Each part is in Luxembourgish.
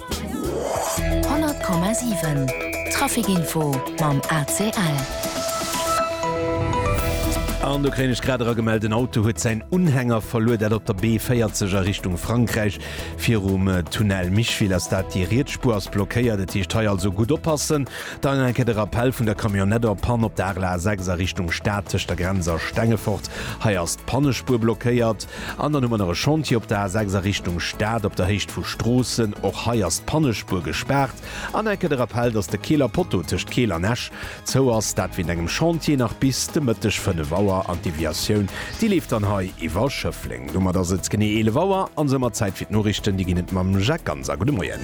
100,7 Trafic info mam ACL. An do kréien ech grad era gemellt, en Auto huet säin Unhänger verluer, dat op der B40 a Richtung Frankräich. Virum Tunnel Micheville ass dat, déi riets Spuer ass blockéiert. Et heescht hei also gutt oppassen. Dann eng Kéier de Rappell vun der Camionnette en panne op der Arler A6 a Richtung Stad tëscht der Grenz a Stengefort. Hei ass d'Pannespuer blockéiert. An dann hu mer nach e Chantier op der A6 a Richtung Stad op der Héicht vu Stroossen. Och hei ass d'Pannespuer gespaart. An enke de Rappel, dass de Keeler Poteau tëscht Keel an Esch zou ass, dat wéint engem Chantier nach bis de Mëtteg 5 Auer. An d'Deviatioun, déi leeft dann hei iwwer Schëffleng. Domat ass et genee 11 Auer a soumat Zäit fir d'Noriichten. Déi ginn et mam Jacques Ganser. Gudde Moien.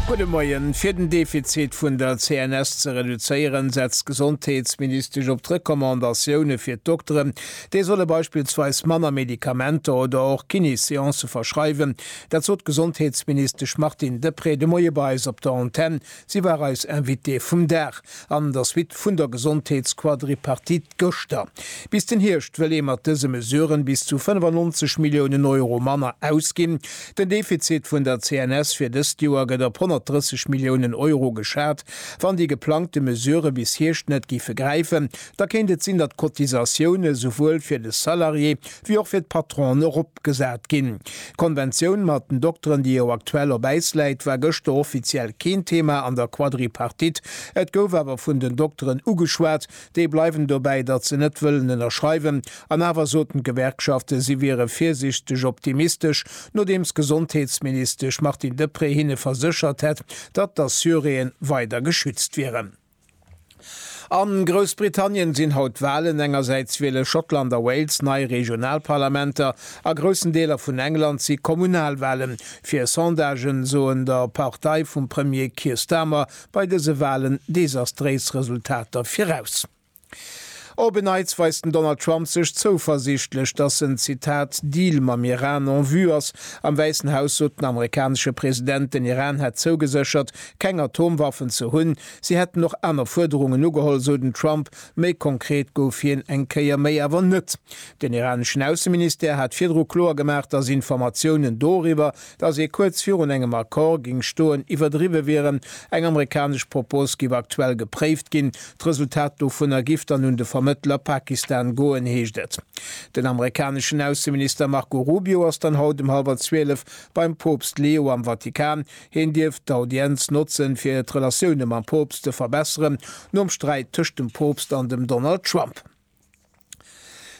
Gudde Moien. Fir den Defizit vun der CNS ze reduzéieren, setzt d'Gesondheetsministesch op d'Recommandatioune fir d'Dokteren. Déi solle beispillsweis manner Medikamenter oder och Kiné-Seancë verschreiwen. Dat sot d'Gesondheetsministesch Martine Deprez de Moie bei eis op der Antenn. Si war eis Invitée vum Dag an der Suite vun der Gesondheetsquadripartite gëschter. Bis den Hierscht wëll ee mat dëse Mesuren bis zu 95 Milliounen Euro manner ausginn. Den Defizit vun der CNS fir dëst Joer gëtt op 130 Milliounen Euro geschat, wann déi geplangte Mesurë bis Hierscht net giffe gräifen, Da kéint et sinn, datt d'Cotisatioune souwuel fir de Salarié wéi och fir d'Patronen eropgesat ginn. D'Konventioun mat den Dokteren, déi jo aktuell op Äis läit, war gëschter offiziell keen Thema an der Quadripartite. Et gouf awer vun den Dokteren ugeschwat. Déi bleiwen dobäi, datt se net wëllen ënnerschreiwen. An awer soten d'Gewerkschaften, si wiere virsiichteg optimistesch, nodeems d'Gesondheetsministesch Martine Deprez hinne verséchert hätt, datt d'Assuréen weider geschützt wieren. A Groussbritannien sinn haut d'Walen, engersäits wiele Schottland a Wales nei Regionalparlamenter, a groussen Deeler vun England si Kommunalwalen. Fir Sondagen soen der Partei vum Premier Keir Starmer bei dëse Walen desastréis Resultater viraus. Op en Neits weist den Donald Trump sech zouversiichtlech, dass en, Zitat, Deal mam Iran en vue ass. Am Wäissen Haus sot den amerikanesche President, den Iran hätt zougeséchert, keng Atomwaffen ze hunn. Si hätten och aner Fuerderungen ugeholl, sou den Trump. Méi konkret gouf hien eng Kéier méi awer net. Den iraneschen Ausseministère hat virdru kloer gemaach, dass Informatiounen doriwwer, dass ee kuerz virun engem Accord géing stoen, iwwerdriwwe wieren. Eng amerikanesch Propos géif aktuell gepréift ginn. D'Resultat dovunner géif dann un de Vermëttler Pakistan goen, heescht et. Den amerikaneschen Ausseminister Marco Rubio ass dann haut um hallwer zwielef beim Poopst Leo am Vatikan. Hien dierft d'Audienz notzen, fir d'Relatioune mam Poopst ze verbesseren, nom Sträit tëscht dem Poopst an dem Donald Trump.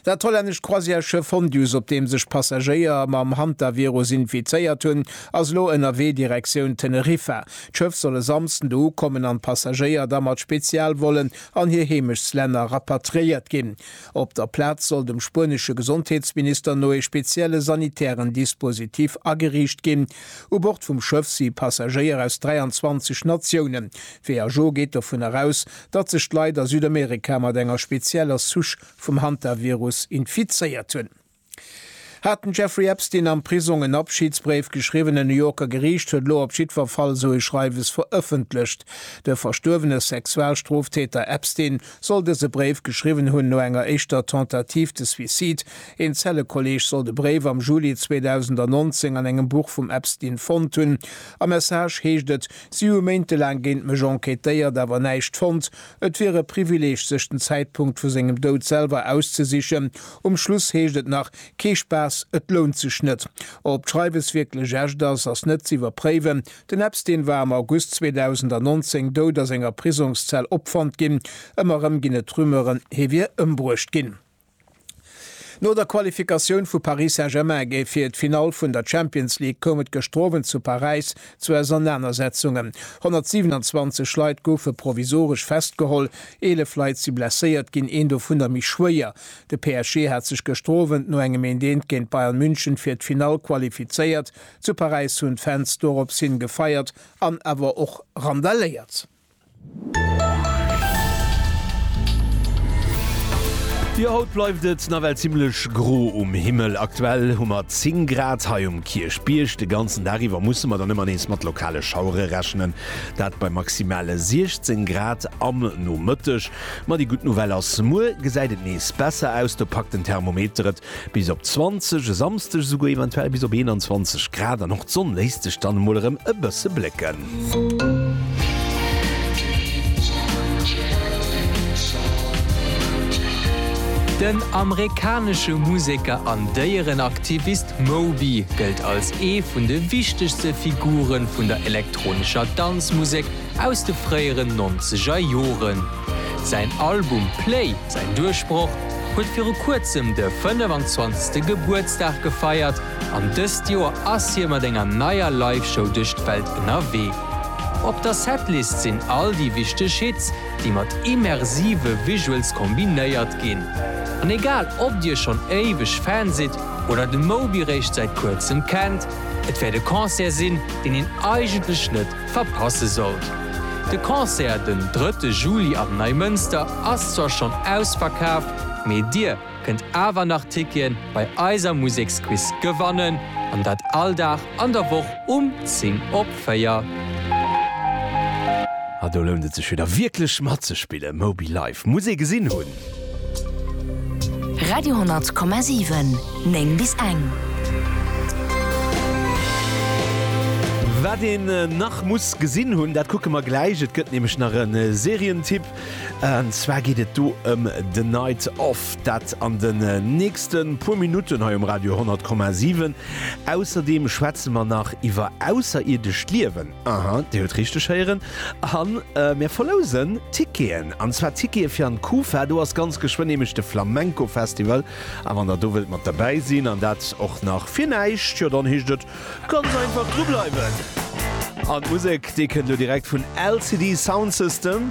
Dat hollännescht Croisièreschiff Fondius, op deem sech Passagéier mam Hantavirus infizéiert hunn, ass elo ënnerwee Direktioun Teneriffa. D'Schëff soll e Samsden do ukommen an d'Passagéier da mat Spezialvollen an hir Heemechtslänner rapatriéiert ginn. Op der Plaz soll dem spuenesche Gesondheetsminister no ee spezielle sanitären Dispositif ageriicht ginn. U Bord vum Schëff si Passagéier aus 23 Natiounen. D'WHO geet dovun eraus, datt sech d'Leit a Südamerika mat enger spezieller Souche vum Hantavirus infizéiert hunn. Hat den Jeffrey Epstein am Prisong en Abschidsbréif geschriwwen? E New Yorker Geriicht huet elo op jiddwer Fall esou e Schreiwes verëffentlecht. De verstuerwene Sexualstroftäter Epstein soll dëse Bréif geschriwwen hunn no enger éischter Tentative de suicide. Een Zellekolleeg soll de Bréif am Juli 2019 an engem Buch vum Epstein fonnt hunn. Am Message heescht et, Si hu méintelaang géint mech enquêtéiert, awer näischt fonnt. Et wier e Privileeg, sech den Zäitpunkt vu sengem Doud selwer auszesichen. Um Schluss heescht et nach, Kee Spaass, et lount sech net. Ob d'Schreiwes wierklech echt ass, ass net ze iwwerpréiwen. Den Epstein war am August 2019 dout a senger Prisongszell opfonnt ginn. Ëmmer erëm ginn et Rumeuren, hie wier ëmbruecht ginn. No der Qualifikatioun vu Paris Saint-Germain géif fir d'Finall vun der Champions League koum et gëschter Owend zu Paräis zu Ausernanersetzungen. 127 Leit goufe provisoresch festgeholl, 11 Leit si blesséiert ginn, een dovunner méi schwéier. De PSG hat sech gëschter Owend no engem Een-d'Eent géint Bayern München fir d'Finall qualifizéiert. Zu Paräis hunn d'Fans dorops hin gefeiert an awer och randaléiert. Jo haut bleift et nawell zimlech gro um Himmel. Aktuell hu mer 10 Grad hei um Kierchbierg. De ganzen Dag iwwer musse mer dann ëmmer nees mat lokale Schauere rechnen, dat bei maximale 16 Grad am Nomëtteg. Ma déi gutt Nouvelle ass, muer gesäit et nees besser aus, do packt den Thermometer et Bis op 20, e Samsdeg esouguer eventuell bis op 21 Grad an och d'Sonn léisst sech dann emol erëm e bësse blécken. Den amerikanesche Museker an Déierenaktivist Moby gëllt als ee vun de wichtegste Figure vun der elektronescher Danzmusek aus de fréieren Nonzegerjoren. Säin Album Play! Säin Duerchbroch huet viru kuerzem de 25. Gebuertsdag gefeiert an dëst Joer ass hie mat enger neier Live-Show duerch d'Welt ënnerwee. Op der Setlist sinn all déi wichteg Hits, déi mat immersive Visuals kombinéiert ginn. An egal ob dir schonn éiweg Fan sidd oder de Moby réischt säit kuerzem kennt, et wäert e Concert sinn, deen een eigentlech net verpasse sollt. De Concert den drëtte Juli am Neimënster ass zwar schonn ausverkaaft, mee dir kënnt awer nach Tickete bei eiser Museksquiz gewannen, an dat all Dag an der Woch um 10 op 4. Ah do lount et sech wieder wierklech matzespillen, Moby Live muss ee gesinn hunn. Radio,7 9 bis eng. Wat een nach muss gesinn hunn, dat kucke mer gläich. Et gëtt nämlech nach e Serientipp. An zwar geet et do ëm The Night Of, dat an den nächste puer Minutten hei um Radio 10,7. Ausserdeem schwätze mer nach iwwer ausserirdesch Liewen. Aha, Dir hutt richteg héieren. A mir verlousen Ticketen. An zwar Tickete fir an d'Kufa. Do ass ganz geschwënn nämlech de Flamenco-Festival. A wann Der do wëllt mat derbäi sinn, an dat och nach fir näischt, jo dann heescht et ganz einfach drubleiwen. An d'Musek, déi kënnt elo direkt vun LCD Soundsystem.